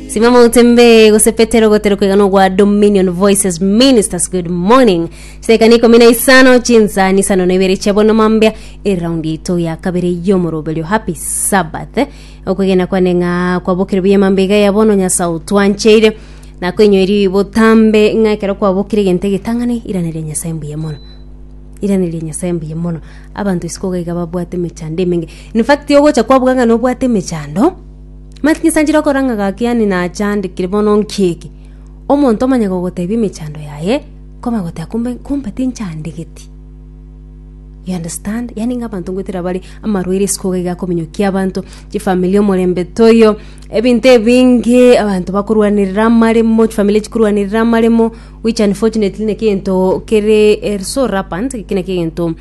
Simama utembee gose Petero gotero kwegana ogwa Dominion Voices Ministers good morning sekana ikumi na isano chinsa nisano na ibere chia bono mambia eraundi yaito ya kabere yomoroberio happy sabbath eh, okwegena kwane ng'a kwabokire buya mambia iga ya bono nyasae otwancheire na koinyoiri botambe ng'a ekero kwabokire egento egetang'ani irane ria nyasae mbuya mono irane ria nyasae mbuya mono abanto isiko iga iga babwate emechando emenge In fact, ogocha kwabuga ng'a nobwate emechando, mati nyesanchire okora ng'a gaki yaani nachandekire bono nki eke. Omonto omanye gogotebia emechando yaye, koma goteba kumbe, kumbe tinchandegeti. You understand? Yaani ng'a abanto ngoetera bare amarwaire isiko iga iga akominyokia abanto, chifamiri omorembe toiyo, ebinto ebinge, abanto bakorwanerera amaremo, chifamiri chikorwanerera amaremo, which unfortunately naki egento kere eh, so rampant, eki naki egento.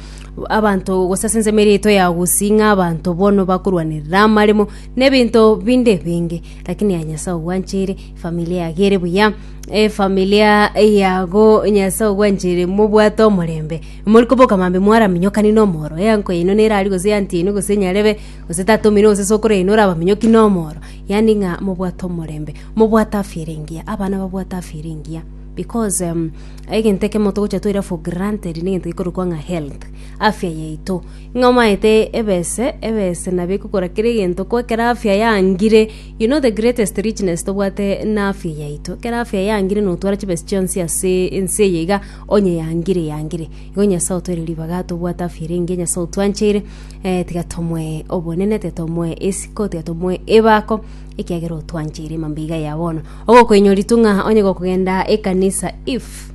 abanto gose ase ensemo eria yaito ya gusii ng'a abanto bono bakorwanerera amaremo na ebinto binde ebinge lakini aye Nyasae ogwancheire, efamilia yago ere buya, efamilia yago Nyasae ogwancheire mobwate omorembe, mori koboka mambia mwaraminyokani na omoro, eanko yaino nere aria gose eanti yaino gose nyarebe, gose tata omonene gose sokoro yaino orabaminyoki na omoro, yaani ng'a mobwate omorembe, mobwate afya ere engiya, abana babwate afya ere engiya. Because um, egento ekemo togocha toira for granted negento gekorokwa ng'a health afya yaito ng'a omaete ebese ebese nabo ekokora kere egento ko ekera afya yangire you know the greatest richness tobwate na afya yaito ekera afya yangire notwara chibesi chionsi ase ense eye iga onye yangire yangire igo nyasae otoire ribaga tobwate afya ere engiya nyasae otwancheire eh, tiga tomoe obonene tiga tomoe esiko tiga tomoe ebako ekiagera otwancheire mambia iga ya bono Ogokwenyo ritung'a onye gokogenda ekanisa if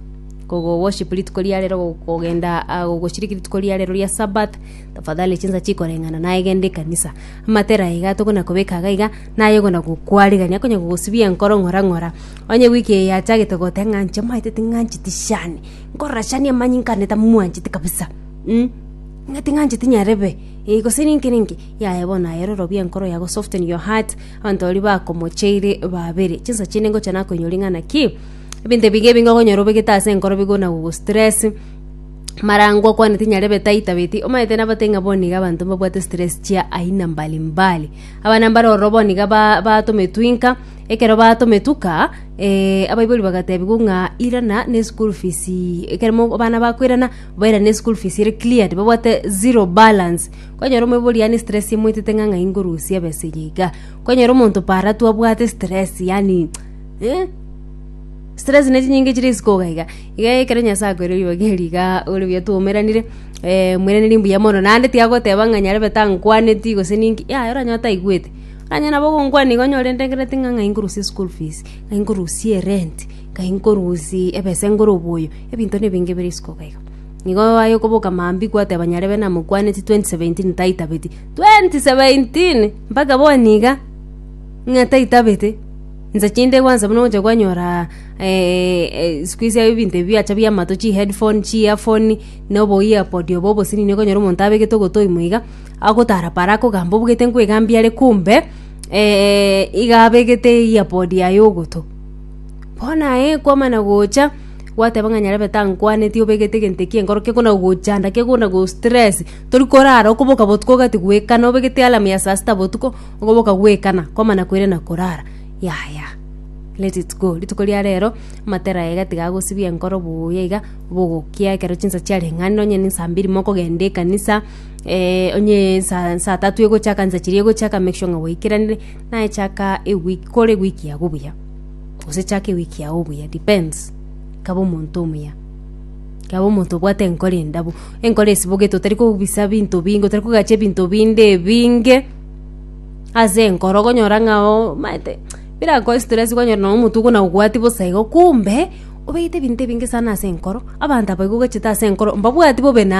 kogoworship rituko riarero gokogenda ah, gogoshiriki rituko riarero ria sabath tafadhali chinsa chikoreng'ana naye genda ekanisa amatera iga tokona kobeka iga iga naye ogona gokwarigania konya gogosibia enkoro ng'ora ng'ora onye wiki eye yachagete goteba ng'a inche maete ting'ancheti shani nkorora shani amanyi nkane tamwancheti kabisa mm? ng'a ting'ancheti nyarebe eh, gose ninki ninki yaya bono aye rorobia enkoro yago soften your heart Abanto baria bakomocheire babere, chinsa chiaino ingocha nakoinyoria ng'a naki ebinto ebiya ebinge okonyora obegete ase enkoro bigo na gogostress, marango okwaneti nyare ebeta aitabeti, omanyete nabatebie ng'a bono iga abanto mbabwate stress chia aina mbali mbali. Abana mbare ororo bono iga ba- batometwe inka, ekero batometuka abaibori bagatebiwa ng'a irana na eschool fees ekero mo- abana bakoirana, bairane eschool fees ere cleared, babwate zero balance. Kwanyora omoibori yaani stress emoitete ng'a ng'ai ngorusia ebesa eye iga. Kwanyora omonto para tu abwate stress yaani eh, stress ne chinyinga chire isiko iga iga. Iga ekero Nyasae akoeire ribaga eri iga ore buya twaumeranire, eh mweraniri mbuya mono. Naende tiyagoteba ng'a nyarebe tankwaneti gose ninki, yaya oranyore taigwete. Onye nabo ogonkwania iga onyore ndengeneti ng'a ng'ai nkorusia eschool fees, ng'ai nkorusia erent, ng'ai nkorusia ebesa ngore oboyo, ebinto na ebinge bire isiko iga iga. Nigo aye okoboka mambia kwateba nyarebe namokwaneti 2017 taitabeti. 2017! Mpaka boni iga? Ng'a taitabete? Insa chinde gwansa buna ogocha kwanyora eh, eh, siku hizi ebinto ebi biacha biamato chi headphone, chi earphone, na obo earpod obo obosinini okonyora omonto abegete ogotoi moiga, agotara para akogamba obugete nkoigambia are kumbe eh, iga abegete earpod yaye ogoto. Bono aye kwamana gocha, gwateba ng'a nyarebe tankwaneti obegete egento ekio enkoro kekona gochanda kekona go stress, tori korara okoboka botuko ogati goekana obegete alarm ya saa sita botuko, okoboka goekana kwamana koirana korara yaya let it go. Rituko ria rero amatera aye iga tiga agosibia enkoro buya iga, bogokia ekero chinsa chiarenge ande onye ne saa mbiri mokogenda ekanisa, onye saa saa tatu egocha kanisa chiria egocha aka make sure ng'a gwaikeranirie. Naye chaka ewiki, kore ewiki yao buya, gose chaka ewiki yao buya, depends, kaba omonto omuya, kaba omonto obwate enkoro endabu, enkoro esibogete otari kobisa binto binge, otari kogacha ebinto binde ebinge ase enkoro, okonyora ng'a omaete birakoe stress okonyora nonye omotwe buna obwati bosa igo, kumbe, obegete ebinto ebinge sana ase enkoro, abanto abaigo ogachete ase enkoro mbabwati bobe naye.